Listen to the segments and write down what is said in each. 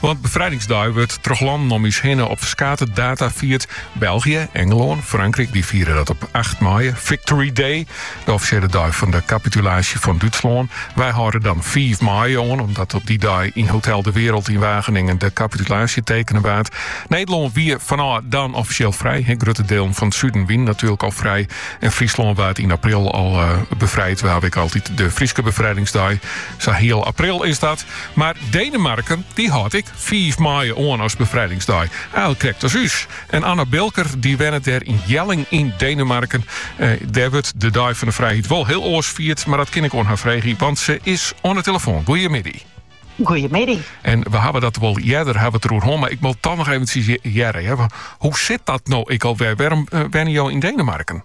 Want befrijdingsdei wurdt troch lannen om ús hinne op ferskate data fierd. België, Engelân, Frankryk dy fiere dat op acht maaie, Victory Day, de offisjele dei fan de kapitulaasje fan Dútslân. Wy hâlde dan fiif maaie oan, omdat op dy dei yn Hotel de Wereld yn Wageningen de kapitulaasje tekene waard. Nederlân wie fanôf dan offisjeel frij. Grutte dealen fan it suden wienen natuerlik al frij en Fryslân waard yn april al befrijd. Wy hawwe ek altyd de Fryske befrijdingsdei. Sa hiel april is dat. Mar Denemarken dy hâldt ek fiif maaie oan as befrijdingsdei. Al krekt as ús. En Anna Bilker dy wennet dêr yn Jelling yn Denemarken. Dêr wurdt de Dei fan de Frijheid wol hiel oars fierd, mar dat kin ik oan har freegje, want se is oan de telefoan. Goeiemiddei. Goeiemiddei. En we hawwe dat wol earder hawwe it eroer hân, mar ik wol it toch noch eventjes hearre. Hoe sit dat no ek alwer? Wêrom wenje jo yn Denemarken?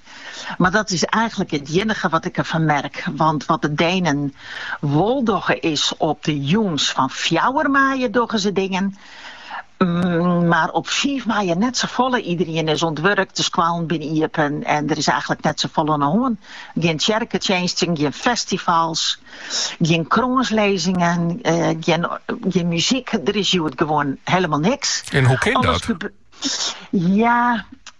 Mar dat is eigenlik it iennige wat ik derfan merk, want wat de Denen wol dogge is op de jûns fan fjouwer maaie dogge se dingen, mar op fiif maaie net safolle. Iederien is oan it wurk, de skoallen binne iepen en der is eigenlik net safolle oan de hân. Gjin tsjerketsjinsten, gjin festivals, gjin krânslizzingen, gjin muzyk, der is hjoed gewoan hielendal niks. En hoe kin dat? Ja.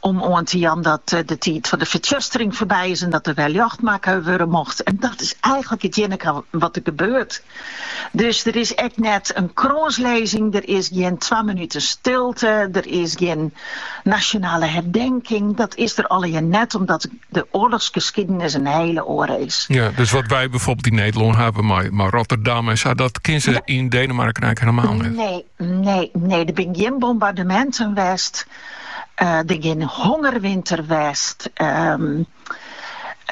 Om oan te jaan dat de tiid fan de fertsjustering foarby is en dat der wer ljocht makke wurde mocht. En dat is eigenlik it iennige wat der gebeurt. Dus der is ek net in krânslizzing, der is gjin twa minuten stilte, der is gjin nasjonale herdenking. Dat is der allegear net, omdat de oarlochsgeskiedenis in hiele oare is. Ja, dus wat wy bygelyks yn Nederlân hawwe, mar, mar Rotterdam en sa, dat kenne se yn Denemarken eigenlik hielendal net. Nee, Nee, nee, der binne gjin bombardeminten west. Uh, der gjin hongerwinter west. Um,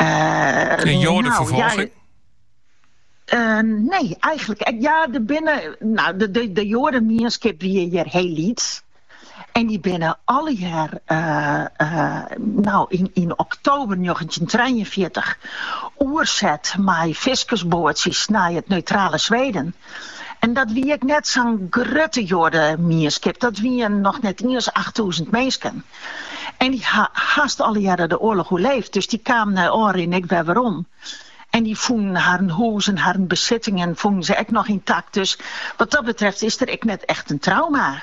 uh, en joadeferfolging? Eh, nee, eigenlik. Eh, ja, der binne. No, de, de, de joademienskip wie hjir hiel lyts. En dy binne allegear, eh, no yn, yn oktober 1943, oerset mei fiskersboatsjes nei it neutrale Sweden. En dat wie ek net sa'n grutte joademienskip, dat wiene noch net iens achttûzen minsken. En dy ha hast allegearre de oarloch oerleefd, dus dy kamen nei ôfrin ek wer werom. En dy fûnen harren hûs en harren besittingen fûnen se ek noch yntakt, dus wat dat betreft is der ek net echt in trauma.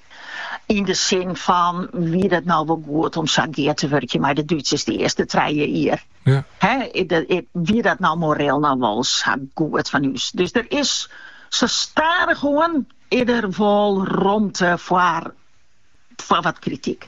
Yn de sin fan, wie dat no wol goed om sa gear te wurkjen mei de Dútsers de earste trije jier? Wie dat no moreel no wol sa goed fan ús? Dus der is sa stadichoan is der wol romte foar wat krityk.